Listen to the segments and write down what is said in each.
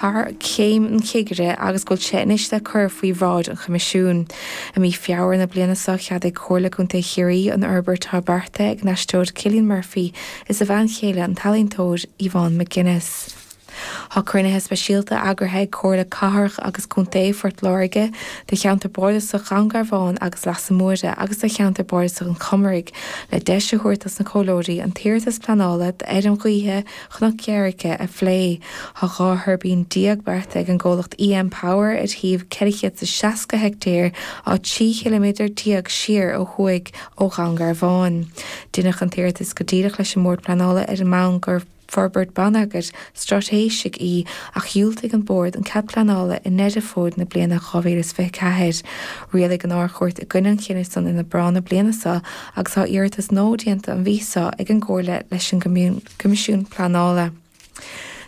thar chéim an chigire agus go bhfuil sé anois le cur faoi bhráid an Choimisiúin. I mí Feabhra na bliana seo, cheadaigh Comhairle Contae Chiarraí an fhorbairt atá beartaithe ag an aisteoir Cillian Murphy is a bhean chéile an t-ealaíontóir Yvonne McGuinness. Tá cruinnithe speisialta eagraithe ag Comhairle Cathrach agus Contae Phort Láirge do cheantar bardasach Dhún Garbhán agus Leasa Móire agus do cheantar bardasach an Chomaraigh le deis a thabhairt dos na comhairleoirí an t-iarratas pleanála d'fheirm ghaoithe Chnoc Dhoire a phlé. Tá dhá thuirbín déag beartaithe ag an gcomhlacht EM Power ar shuíomh 460 heictéar atá 3 chiliméadar déag siar ó thuaidh ó Dhún Garbhán. Deineadh an t-iarratas go díreach leis an mBord Pleanála ar an mbonn gur forbairt bonneagair straitéisigh í ach dhiúltaigh an Bord an cead pleanála i nDeireadh Fómhair na bliana 2024. Rialaigh an Ard-Chúirt i gcoinne an chinnidh san in Aibreán na bliana seo agus tá iarratas nua déanta an mhí seo ag an gcomhlacht leis an. Coimisiún Pleanála.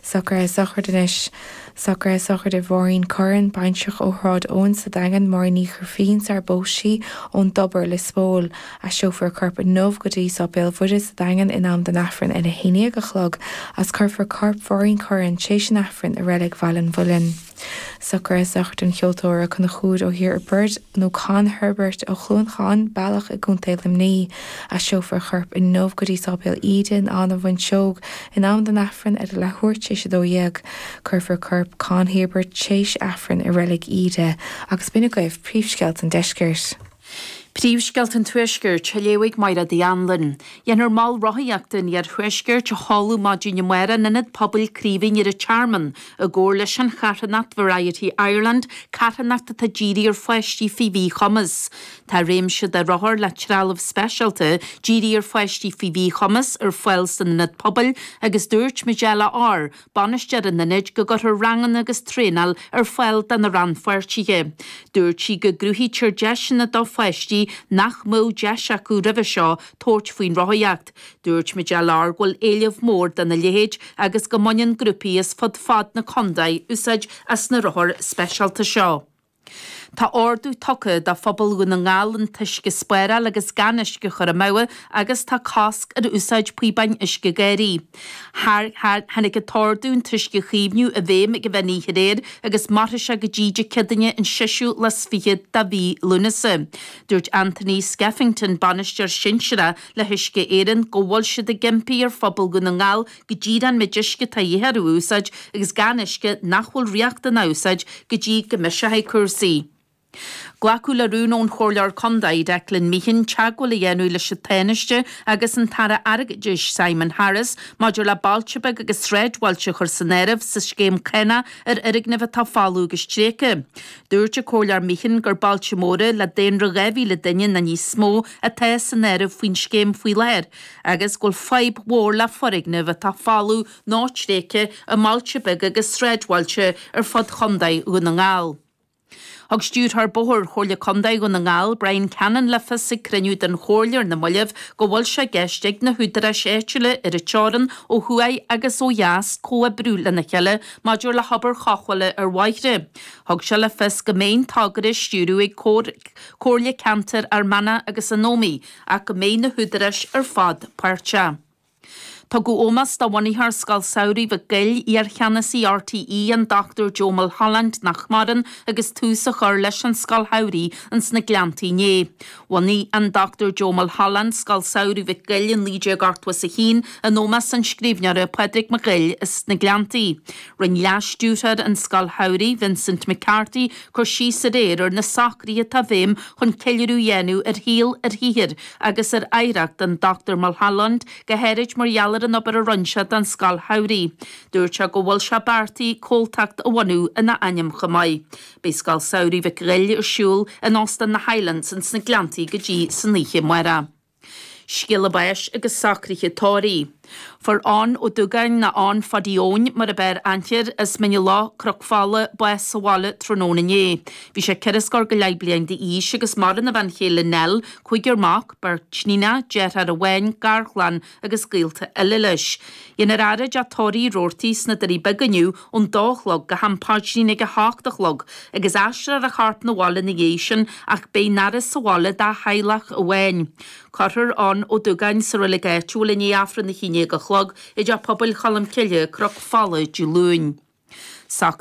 Socruithe sochraide anois. Socruithe sochraide Mháirín Curran, baintreach ó Shráid Eoin sa Daingean, Máirín Ní Ghrifín, sarar phós sí, ón dTobar, Lios Póil. Aistreofar a corp inniu go dtí Sáipéal Mhuire sa Daingean in am don Aifreann ar a haon déag a chlog, is cuirfear corp Mháirín Curran tréis an Aifrinn i reilig Bhaile an Mhuilinn. Socruithe sochraide an cheoltóra Conchúr Ó hOirbeaird, nó Con Herbert, ó Chluain Catháin, Bealach i gContae Luimnigh, aistreofar a chorp inniu go dtí Sáipéal Íde in Áth na bhFuinseog in am don Aifreann ar a leathuair tar éis a dó dhéag. Cuirfear corp Con Herbert théis Aifrinn i Reilig Íde agus b'in agaibh príomhscéalta an deiscirt. Príomhscéalta an Tuaiscirt, a léifidh Máire Dinny Wren. Déanfar Mol Rothaíochta an Iarthuaiscirt a sheoladh maidin amárach in Ionad Pobail Chraoibhín ar an Tearmann i gcomhar leis an charthanacht Variety Ireland, carthanacht atá dírithe ar pháistí faoi mhíchumas. Tá réimse de rothair le trealamh speisialta dírithe ar pháistí faoi mhíchumas ar fáil san Ionad Pobail agus dúirt Majella Orr Bainisteoir an Ionaid go gcuirfear ranganna agus traenáil ar fáil do na rannpháirtithe. Dúirt sí go gcruthaítear deiseanna do pháistí nach mbeadh deis acu roimhe seo tabhairt faoin rothaíocht. Dúirt Majella Orr go bhfuil éileamh mór dona leithéid agus go mbaineann grúpaí as fud fad na contae úsáid as na rothair speisialta seo. Tá ordú tugtha do phobal Dhún na nGall an t-uisce a spáráil agus gan uisce a chur amú agus tá cosc ar úsáid píobáin uisce garraí. Tháinig an t-ordú an t-uisce a chaomhnú i bhfeidhm ag uair an mheán oíche aréir agus mairfidh sé go dtí Dé Céadaoine an seisiú lá is fiche de mhí Lúnasa. Dúirt Anthony Skeffington, Bainisteoir Sinsearach le hUisce Éireann go bhfuil siad ag impí ar phobal Dhún na nGall go díreach an méid uisce atá a dhíth orthu a úsáid agus gan uisce nach bhfuil riachtanach a úsáid go dtí go mbiseoidh cúrsaí. Glacadh le rún ón Chomhairleoir Contae, Declan Meehan, teagmháil a dhéanamh leis an Tánaiste agus an tAire Airgeadais, Simon Harris, maidir le bailte beaga agus sráidbhailte a chur san áireamh sa scéim cánach ar fhoirgnimh atá folamh agus tréigthe. Dúirt an Comhairleoir Meehan gur bailte móra, le daonra 2,000 duine nó níos mó, atá san áireamh faoin scéim faoi láthair, agus go bhfuil fadhb mhór le foirgnimh atá folamh nó tréigthe i mbailte beaga agus sráidbhailte ar fud Chontae Dhún na nGall. Thug Stiúrthóir Bóthair Chomhairle Contae Dhún na nGall, Bryan Cannon le fios ag cruinniú den Chomhairle ar na moillibh go bhfuil sé i gceist ag na húdaráis áitiúla ar an teorainn ó thuaidh agus ó dheas comhoibriú lena chéile maidir le hobair chothabhála ar bhóithre. Thug sé le fios go mbeidh an togra á stiúradh ag Comhairle Ceantair Fhear Manach agus an Ómaigh, ach go mbeidh na húdaráis ar fad páirteach. Tugadh ómós do bhunaitheoir Scoil Samhraidh Mhic Goill, iarcheannasaí RTÉ, an Dr Joe Mulholland, nach maireann, agus tús á chur leis an Scoil Shamhraidh ins na Gleanntaí inné. Bhunaigh an Dr Joe Mulholland Scoil Samhraidh Mhic Goill i 1981 in ómós an scríbhneora Pádraig Mac Goill as na Gleanntaí. Rinn leas-stiúrthóir an Scoil Shamhraidh, Vincent McCarthy, cur síos aréir ar na socruithe atá i bhfeidhm chun ceiliúradh a dhéanamh ar shaol, ar shaothar agus ar oidhreacht an Dr Mulholland, go háirid mar gheall ar an obair a rinn sé don Scoil Shamhraidh. Dúirt sé go bhfuil sé beartaithe comhaltacht a bhunú ina ainm chomh maith. Beidh Scoil Samhraidh Mhic Ghoill ar siúl in Óstán na Highlands ins na Gleanntaí go dtí san oíche amárach. Scéala báis agus socruithe tórraimh. Fuair Eoin Ó Dúgáin, nó Eoin Phadaí Eoin mar ab fhearr aithne air as Mín na Loch, Cnoc Fola, bás sa bhaile tráthnóna inné. Bhí sé ceithre scór go leith bliain d'aois agus maireann a bhean chéile Nell, cúigear mac, beirt níonacha, deirfiúr amháin, garchlann agus gaolta eile leis. Déanfar a fhaire i dteach tórraimh Roarty sna Doirí Beaga inniu ón dó a chlog, go ham paidrín ag a h-ocht a chlog, agus aistreofar a chorp 'na bhaile 'na dhiaidh sin, ach beidh an fhaire sa bhaile dá theaghlach amháin. Cuirfear Eoin Ó Dúgáin sa reilig áitiúil i ndiaidh Aifreann a haon déag a chlog i dTeach Pobail Cholmcille, Cnoc Fola, Dé Luain. Socraítear.